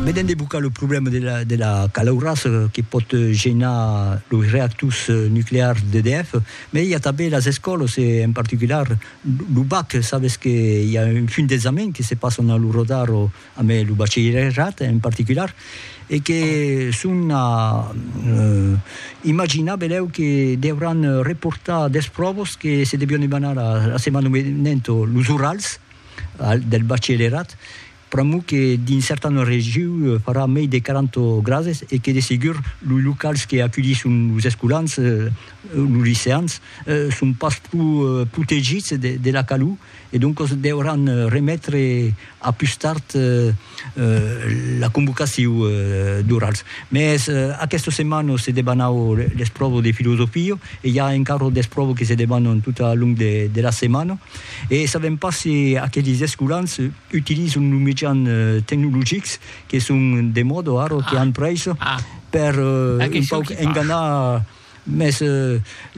Vedent de bocar lo problèma de la calaurassa que pòt genar los reactors nuclears d'EDF, mai i a tanben las escòlas e en particular lo bac, sabes que i a un funt d'examens que se passan a lo rodar amb lo bachelierat en particular e que son a imaginar benlèu que deuràn reportar dètz pròvas que se devián demanar la setmana venenta, los orals. del bachelerat, pr'amor que dins certanas regions farà mei de 40 grades e que de segur los locals que aculhisson los escolans, los liceans, son pas pro protegits de la calor e doncas deuràn remetre a pus tard. la convocaciu d'orals. Mès aquesta setmana se debanau l'espròva de filosofia e i a encara d'espròvas que se debanan tot al long de la setmana e sabèm pas se aqueles escolans utilizan los mejans tecnologics que son de mòda ara, que an prèissa, per un pauc enganar Mès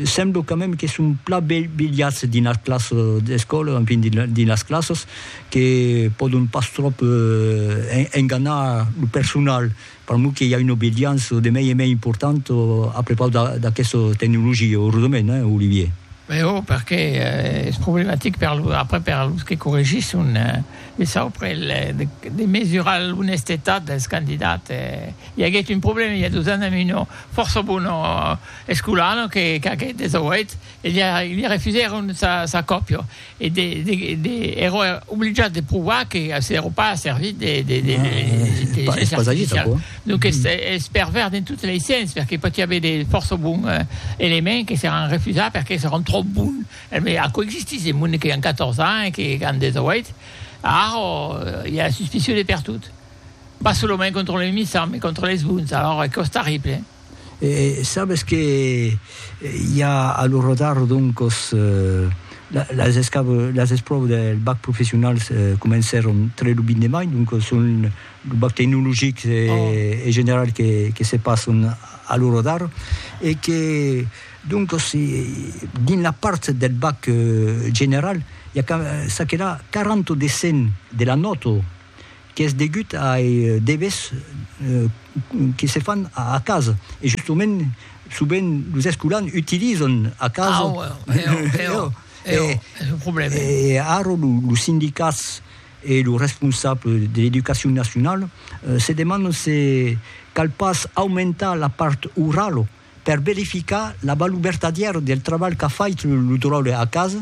semblo quand mème que son plan bilhats dins las classes d'escòla, enfin dins las classes, que pòdon pas tròp enganar lo personal. Per moi que i a una obedeança de mei e mei importanta a prepaus d'aquesta tecnologia, eusament, hein, Olivier? Bèu, perqué es problematic per los, après per los que corregisson, de saupre, de mesurar l'onestetat dels candidats. I aguèt un problèma i a dos ans a Meudon. Fòrça bon escolana que qu'aqueth des auèt, e li refusèron sa còpia, e ère obligat de provar que s'ère pas servit de l'intelligéncia artificiala. Donc es pervèrs dens totes lei sens, perque pòti aver de fòrça bon elements que seràn refusats perque seràn tròp bons. Mès aquò existís, de monde que an 14 ans e qu'an des auèt, ara i a suspicion de pertot. Pas solament contra lei missants, mai contra leis bons, alors es que'us tarrible. E sabes que i a a lo Rodarro doncos las escav las espròvas del bac professional comencèron tre lo 20 de mai, doncos son lo bac tecnologic e general que que se passon a lo Rodarro e que doncos dins la part del bac general i a ca çaquelà 40 de 100 de la nòta qu'es degut ai debes que se fan a casa e justement sovent los escolans utilizan a casa e ara los sindicats e los responsables de l'educacion nacionala se demandan se cal pas aumentar la part orala per verificar la valor vertadièra del trabalh qu'a fait lo dròlle a casa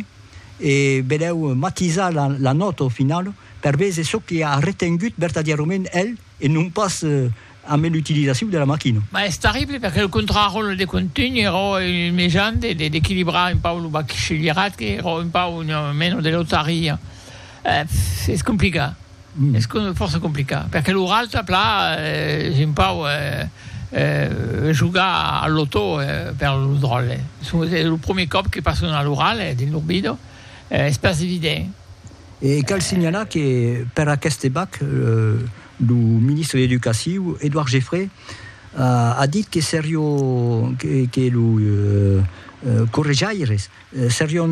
e benlèu matisar la nòta au final per véser çò que a retengut vertadièrament el e non pas amé l'utilizacion de la maquina. Mas es terrible perque lo contraròtle de contunh ero un mejan d'equilibrar un pauc lo bachillerat que ero un pauc una mena de lotaria. Es complicat. Es fòrça complicat, perque lo ralta pla es un pauc jogar al lotò per lo dròlle. Es lo premier còp que pason a lo ralhe dins lor vida, es pas evident. E cal signalar que per aqueste bac, lo ministre d'Educaciu, Edouard Geffray, a dit que serió que lo correjaires Serion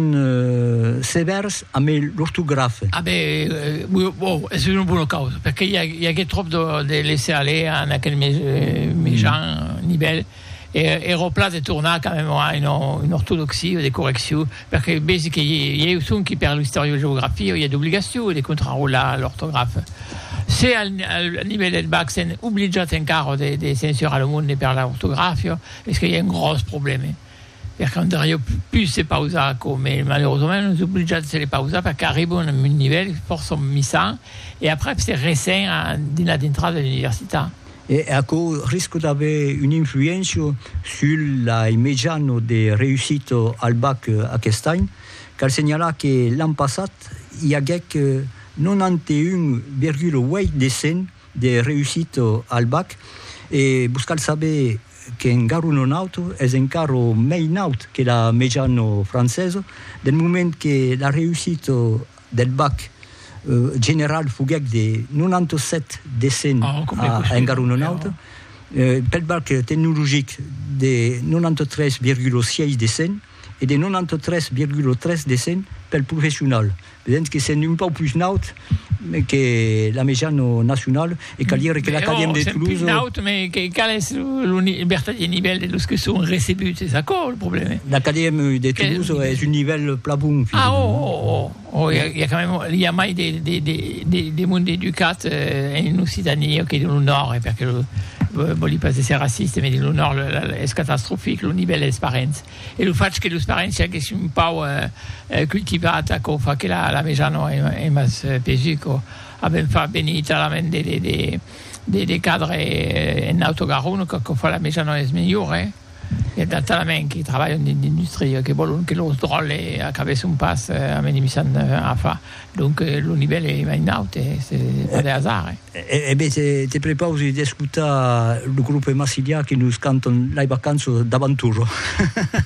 sevèrs amé l'ortografe. A ben, bo, es una bona causa, perque i agué tròp de laisser aller en aquel mejan nivèl, e ero plan de tornar quand même a una ortodoxia de correccion, perque besi que ieu sonqui per l'istoriogeografia i a d'obligacion de contrarolar l'ortografe. Se al nivèl del bac sèn obligat encara de censurar lo monde per l'ortografia, es que i a un gròs problème. Per quand ara jo pus se pausar aquò, me malerosament non es oblijat de se le pausar perque arribo en un nivèl fòrça misan e aprèp se resen a dins la dintrada de l'universitat. E aquò risca d'aver una influéncia sul lai mejano de reüssita al bac aquest any. Cal senhalar que l'an passat i aguèc 91,8 de 100 de reüssita al bac e vos cal saber qu'en garu non auto, es encara mei naut que la mejano francesa, del moment que la reussita del bac general foguèc de 97 de 100 a en garu non auto, pel bac tecnologic de 93,6 de 100. e de 93,3 de 100 pel professional, vedètz que sèm un pauc pus naut que la mejana nacionala e cal dire que l'Acadèmia de Toulouse... Sèm pus naut, mès que qual es lo vertadièr nivèl de los que son recebuts? Es aquò lo problèma. L'Acadèmia de Toulouse es un nivèl plan bon, finalement. Ah, oh, oh, oh! O i a quand même, i a mai de monde educat en Occitanie que dins lo Nòrd, perque vòli pas èsser raciste, mès dins lo Nòrd es catastrofic lo nivèl dels parents. E lo fach que los parents siaguèssi un pauc cultivats aquò fa que la meja non es mas pesu quò. Avèm fach venir talament de cadres en Auto Garonne, qu'aquò fa la meja non es melhora. E tant talament que trabalhan dins l'industria que vòlon que los dròlles acabèsson pas amenimissant afa. Donc lo nivèl es mai naut, es pas de hasard. E ben, te prepausi d'escotar lo grupe Massilia que nos cantan Lei vacanças d'avanturo.